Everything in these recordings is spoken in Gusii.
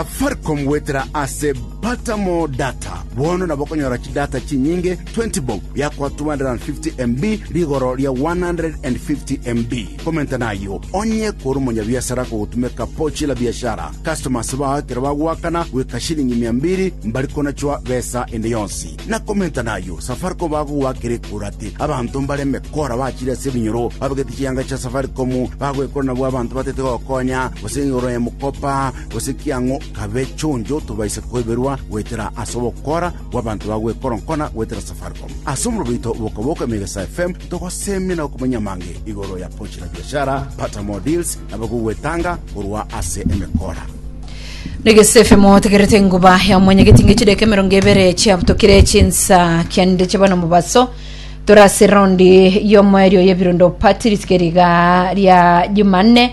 Safaricom goetera ase Butter More Data. Bono nabo okonyora chidata chinyinge 20 bob biakwa 250 MB rigoro ria 150 MB. Komenta nayio onye kore omonyabiasara kogotumeka Pochi la Biashara. Customers bao ekero bagoakana goika shilingi mia mbiri mbari konachwa besa ende yonsi. Na komenta nayio Safaricom bagogoakera ekura ati abanto mbare emekora bachire ase ebinyoro babegete chianga chia Safaricom bagoekora nabwo abanto batete gokonya gose igoro ya mokopa gose kiang'u kabe chonjo tobaise koiberwa goetera ase ogokora gw'abanto ba gwekoronkona goetera Safaricom. Ase omorero oito boka-boka Emegesa FM togosemia na gokumanyia amange igoro ya Pochi la Biashara, Pata More Deals, na abwo gwetanga korwa ase emekora. Negese FM otegerete enguba ya omwanya getinge chideka emerongo ebere chiabutokire chinsa kiande chiaba na omobaso tore ase raundi y'omoerio y'ebirondo pati ritige riga ria jumanne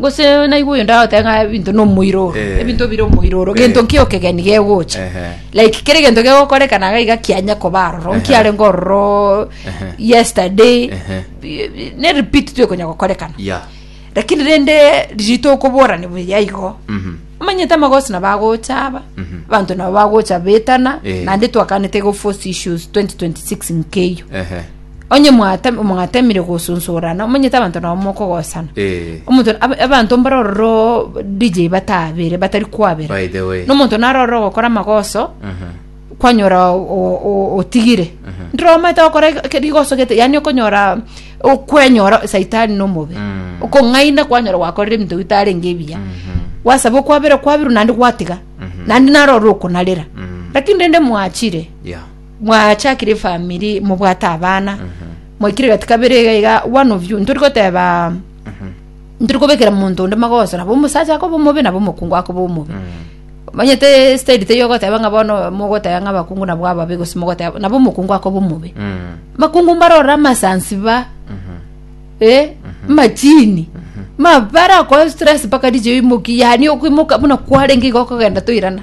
gose naigwe oyo ndagoteba ng'a ebinto na omoiroro Eh. ebinto bire omoiroro Eh. gento ki okegeni gegocha Ehe. like kere gento gegokorekana iga iga kianya koba aroro Ehe. nkiarenge ororo Ehe. yesterday Ehe. bi- ne repeat twekonya gokorekana ya lakini rende ririto okoborani buya igo Mhm. omanyete amagosi nabo agocha aba Mhm. abanto nabo bagocha betana Eh. naende twakanete go force issues 2026 nkeiyo Ehe. onye mwate- mwatemire gosunsurana omanyete abanto nabo mokogosana Eh. omonto ab- abanto mbare ororo dj batabere batari kwabera By the way. nomonto naro ororo ogokora amagoso Aha. kwanyora o- o- o- otigire ndire omanyete gokora eke- rigoso gete yani okonyora okwenyora saitani nomobe Mm. okong'aina kwanyora gwakorire ebinto bitarenge ebiya Mhm. wasaba okwabera kwabiru nandi gwatiga nandi naro ororo okonarera Mm. lakini rende mwachire Yeah. mwachakire efamiri mobwate abana mwaikire gati kabere iga iga one of you ntori goteba ntori kobekera monto onde magoso nabo omosacha akoba omobe nabo omokungu akoba omobe omanyete style teiyo ogoteba ng'a bono mogoteba ng'a abakungu nabo ababe gose mogoteba nabo omokungu akoba omobe makungu mbarorora amasansi ba eh machini mabara kwa stress mpaka riche imoki yani okoimoka buna kwarenge iga okogenda toirana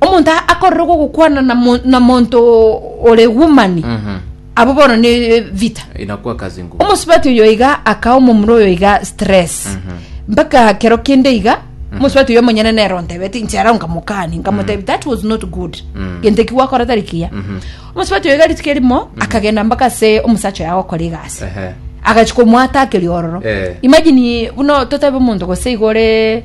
omonto akorerwa gokwana na mo- na monto ore womani Mhm. abo bono ne vita Inakuwa kazi ngumu. omosubati oyo iga akaha omomura oyo iga stress Mhm. mpaka kero kende iga omosubati oyo omonyene nero ntebete inchera nkamokani nkamotebi that was not good Mm. gento ki gwakora tari kiya Mhm. omosubati oyo iga rituko erimo akagenda mpaka se omosacha oyo agokora egasi Ehe. agachika omwatakeria ororo Eh. imagine buno totebe omonto gose igore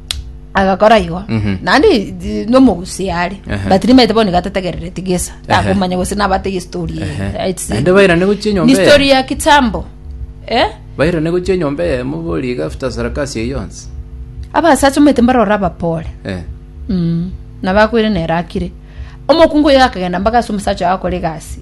agakora igo Mhm. naende i- nomogusii are Ehe. but rimaete bono niga tategerereti gesa takomanya gose nabatege story eye. Ehe. It's- Naende bairane gochia enyomba ni eye. story ya kitambo eh? bairane gochia enyomba eye mobori iga after sarakasi eye yonsi abasacha omanyete mbarora abapore Eh, mm. nabakoire nere akire omokungu oyo akagenda mpaka ase omosacha oyo akora egasi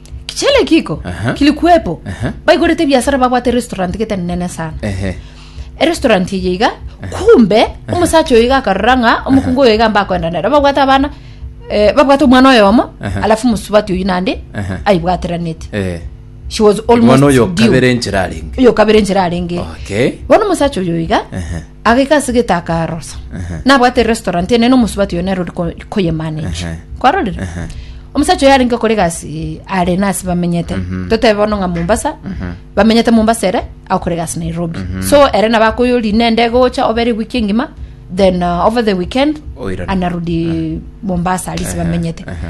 Kichele kiko Aha. kilikuepo Aha. baigorete ebiasara babwate erestaurant gete nene sana Ehe. erestaurant eye iga kumbe omosacha oyo iga akarora ng'a omokungu oyo iga mbakoenda nere babwate abana eh, babwate omwana oyomo Aha. alafu mosubati oyu nande Aha. aibwateranete Eh. she was almost mwana oyo due. kabere enchera arenge oyo kabere enchera arenge Okay. bono omosacha oyo iga Ehe. agaika ase gete akarosa Ehe. nabwate restaurant ene na omosubati oyo nero ori ko- koyemanage Ehe. kwarorire Ehe. omosacha oyo arenge kore gasi are nasi bamenyete Mhm. totebe bono ng'a mombasa Mhm. bamenyete mombasa ere akore gasi nairobi Mhm. so ere nabo akoyori ne ndege gocha obere wiki engima then uh, over the weekend Oirane. anarudi mombasa arisi Ehe. bamenyete Ehe.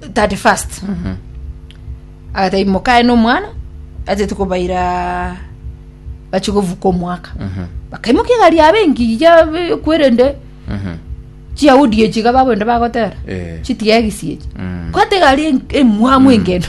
31st agata imokae nomwana atete kobaira bache govuka omwaka bakaimoka egari yabe engiya yabe kwerende chiyahudi echi iga babwende bagotera Eh. chitiegisi echi Mm. kwate egari en- emwamu engendo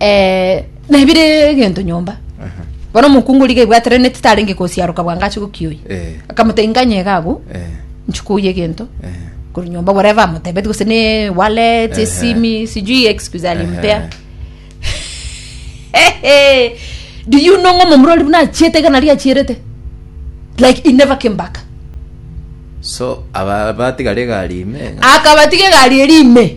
eh, nebire egento nyomba bono omokungu riga ebwateraneti tarenge kosiaroka bwango ache gokioyi Eh. akamota inganye gago Eh, nchikoyi egento eh. kuri nyomba whatever amotebeti gose ne wallet Ehe. esimi sijui excuse alimpea Ehe. do you know ng'o momura ori buna achiete iga nari achierete like he never came back so aba batiga regari ime akabatiga egari eri ime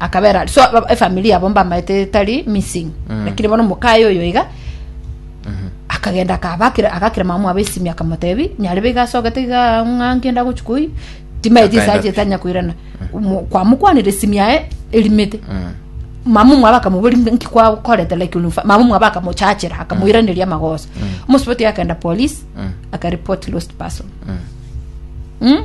akabera so aba- efamily yabo mbamaete etari missing Mm. lakini bono mokaye oyo iga akagenda akabakira agakira mama mwabo esimi akamotebi nyare biga asogete iga ng'a ngenda gochi koi timaeti Akaenda isaje pi- tanya koirana Mo- kwamokwanire esimi yaye erimete Mm. mama mwaba akamubori nki kwakorete like ulufa mama mwaba akamochachera akamoiraneria amagoso omusiboti akenda police Mm. akareport lost person Mm. mm?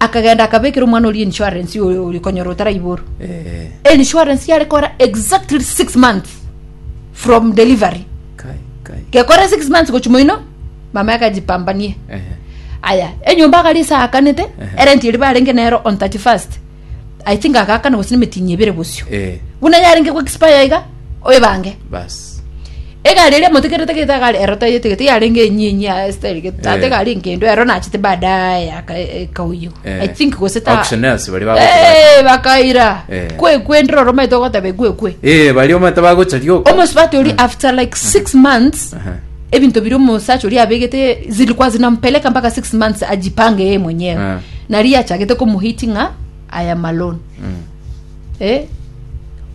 akagenda akabekera omwana oria insurance oyo ori konyora otaraiboro Eh, insurance yare kora exactly six months from delivery kai, kai. gekora six months gochuma ino mama yakajipambanie Eh, aya enyomba agari isakanete Ehe. erenti eri barenge nero on 31st I think agakana gose nemetinyi ebere bosio. Eh. Buna yarenge go expire iga oyebange. Bas. Egari eria motekerete gete agari ero tayete gete yarenge enyi enyi ya style gete tate Eh. gari ngendo ero nachete baadaye yaka kauyo. Eh. I think gose ta Auctioneers bari bagocha Eh bakaira. Eh. Kwe kwe ndro roma itogo tabe kwe kwe. Eh, baria omanyete bagocha rioka. Almost batoli after like 6 months Aha. ebinto biri omosacha oria abegete zilikuwa zinampeleka mpaka six months ajipange yeye mwenyewe Eh. nari achagete komuhiti ng'a aya malone Mm. eh?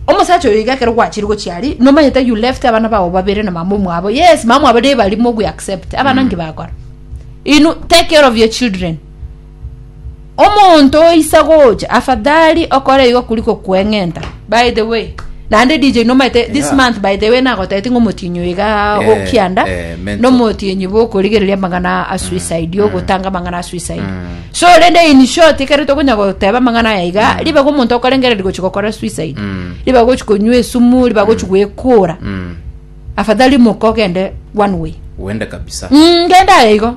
omosacha oyo iga ekero gwachire gochiari nomanyete you left abana bao babere na mama omwabo yes mama mwabo nebari mogwe accept abana nki bakora inu take care of your children Omonto oisa gocha afadhali okore igo kuri kokweng'enta. By the way, naende DJ nomaete this Yeah. month by the way nagotete ng'a omotienyi oiga Eh, okianda eh, mental. nomotienyi bokorigereria amang'ana a suicide ogotanga amang'ana a suicide so rende in short ekero tokonya goteba amang'ana aya iga ribaga omonto okorengereria gochi gokora suicide Mm. ribaga gochi konywa esumu ribaga gochi gwekora Mm. afadhali moka ogende one way Uende kabisa. Mm, ngende aye igo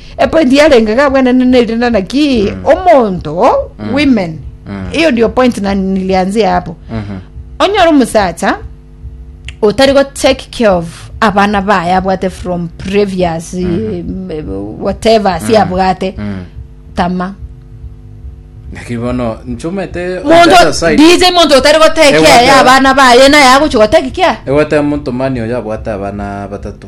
Epointi yarenge iga bwenene ne rinde naki omonto women eyo ndio point na nilianzia hapo onyora omusacha otari go take care of abana baye abwate from previous eh, whatever si abwate tama Naki bono nchomete on the other monto side. dj monto otari go take Ewa, care ya ewa. abana baye naye agochi go take care Ewate monto mani oyo abwate abana batato.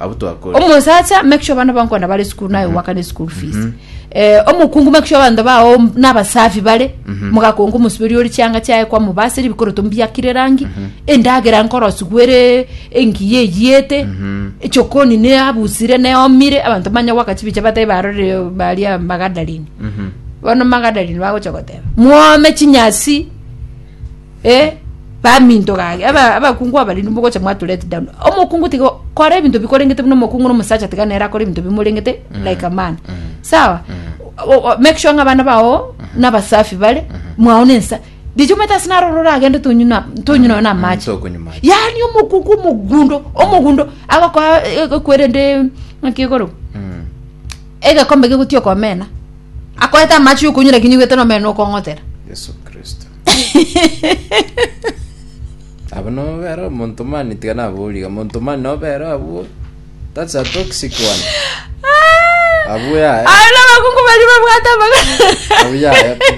Abwo twakore. omosacha make sure abana bankwana bare school naye owakana eschool fees Eh, omokungu make sure abanto bao nabasafi bare mogakonga omosuberi ore chianga chiaye kwamobaseri bikoroto mbiakire erangi endagera nkorosigwere engiya eyete echokoni neabusire neomire abanto banya gwaka chibicha batae barore baria magadarini bono magadarini bagocha goteba mwome chinyasi Ee, baminto gaki, aba- abakungu abariri mogocha mwatu let down. Omokungu tiga kora ebinto bikorengete buna omokungu na omosacha tiga nere akore ebinto bimorengete like a man. Sawa? O- o- Make sure ng'a abana bao nabasafi bare, mwao nensa. Richo omanyete ase naro ororo oragende tonywe na- tonywe noyo na amache. tokonywa mache. yaani omokuku omogundo omogundo agokoa ekwerende ng'aki igoro Mm. egekombe gegotia okomena akoete amache yokunywa lakini nigwete nomere nokong'otera yesu kristo abo nobere omonto mani tiga naboriga monto mani nobere abwo that's a toxic one abwo yae aro nabakungu bari babwate amagana abwo yae pi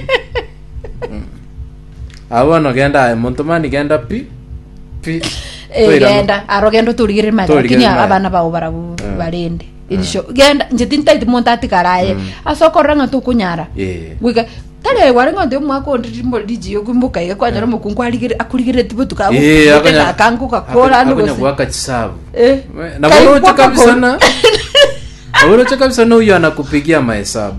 Mm. abo bono genda aye monto mani genda pi pi Toirano. egenda aro genda otorigere mare Torigere lakini mare. abana bao barabu Eh. barende erisio genda nche tintaiti monto atigara aye ase okorora ng'a tokonyara Eh. goika tari gware ng'a onde omwaka onde rimbo rigiya okwimboka iga kwanyora omokungu arigere akurigereti botuko Eh, agokunyete akonya- gakango gakora ande akonya gose goaka chisabu Eh. na Kai bono oche kwaka kabisa gol. na obono oche kabisa na huyo anakupigia mahesabu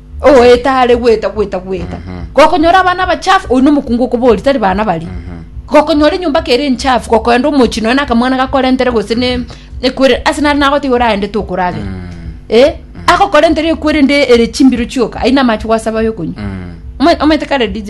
ogoeta are goeta goeta goeta gokonyora abana abachafu oyu nomokungu okobori tari bana bari gokonyora enyomba kere enchafu gokoenda omochi nonya na akamwana gakorentere gose ne ekwerere ase nare nagotiga oragende tokoragera eh agokorentere ekwerende ere chimbiro chioka ayio namache gwasaba ayokonywa Omanye- omanyete kare DJ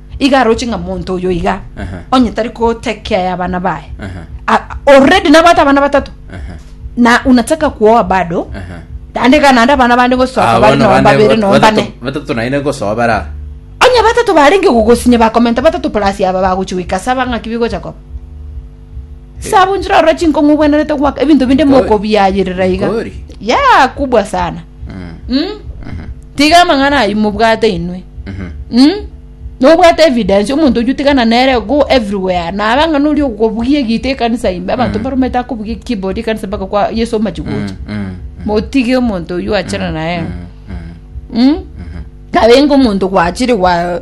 iga aroche ng'a monto oyo iga Aha. onye tari kotekea ya abana baye Aha. A- already nabwate abana batato Aha. na unataka kuoa bado Aha. naende iga naende abana bande gosoa Ah, kabare bono noa bande babere bat- noa batato- bane batato naende gosoa bara onye batato barenge gogosinya bakomenta batato plus aba bagochi goika saba ng'aki bigocha koba Ase abwo inchera orore chinkong'u obwenerete goaka ebinto binde Nkori. mokobiayerera iga Nkori. ya kubwa sana Mm. Mm? Mhm. tiga amang'ana ayi mobwate inwe Mhm. Mm? nobwate evidence omonto oyu tigana nere go everywhere nabe ang'ana ori okobugia egita ekanisa ime abanto baromete akobugia keyboard ekanisa mpaka kwa yesu omachi gocha Mm. Mm. motige omonto oyu achana naye Mm. Mm. Mm? nabe ingo omonto gwachire gwa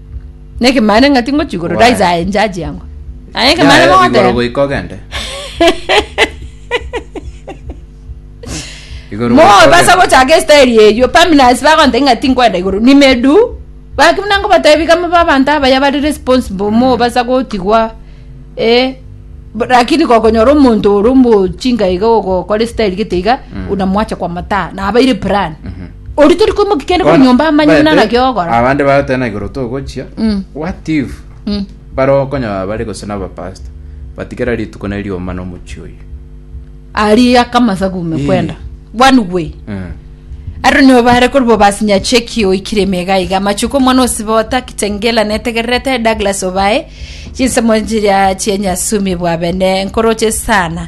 Nekemana ng'ati ngochi igoro Why? rise aye njaji yango. Aye kemana Yae, igoro bagotera. goika ogende Igoro Mo goika basa ogende. gochaka estaili eyio paminasi bagonta ing'ati nkwenda igoro nimedu baki buna ngobatebi kama babanto abaya bari responsible mo basa gotigwa eh b- lakini gokonyora omonto ore omochinga iga ogokora estaili gete iga unamwacha kwa mataa nabaire plan Mhm. Oria tori koimokia kende korwa nyomba amanye buna naki ogokora. abande bagoteba na igoro togochia Mm. what if Mm. bare okonyora bare gose na abapasta batigera rituko ne rioma na omochie oyo Ari akamasa gume Eh. kwenda. One way. Mm. Aro nibo bare kori bobasinya cheki oikire emega iga machuko omwana osibota kitengela netegererete Douglas obae chinsemo chiria chienyasumi bwabene nkoroche sana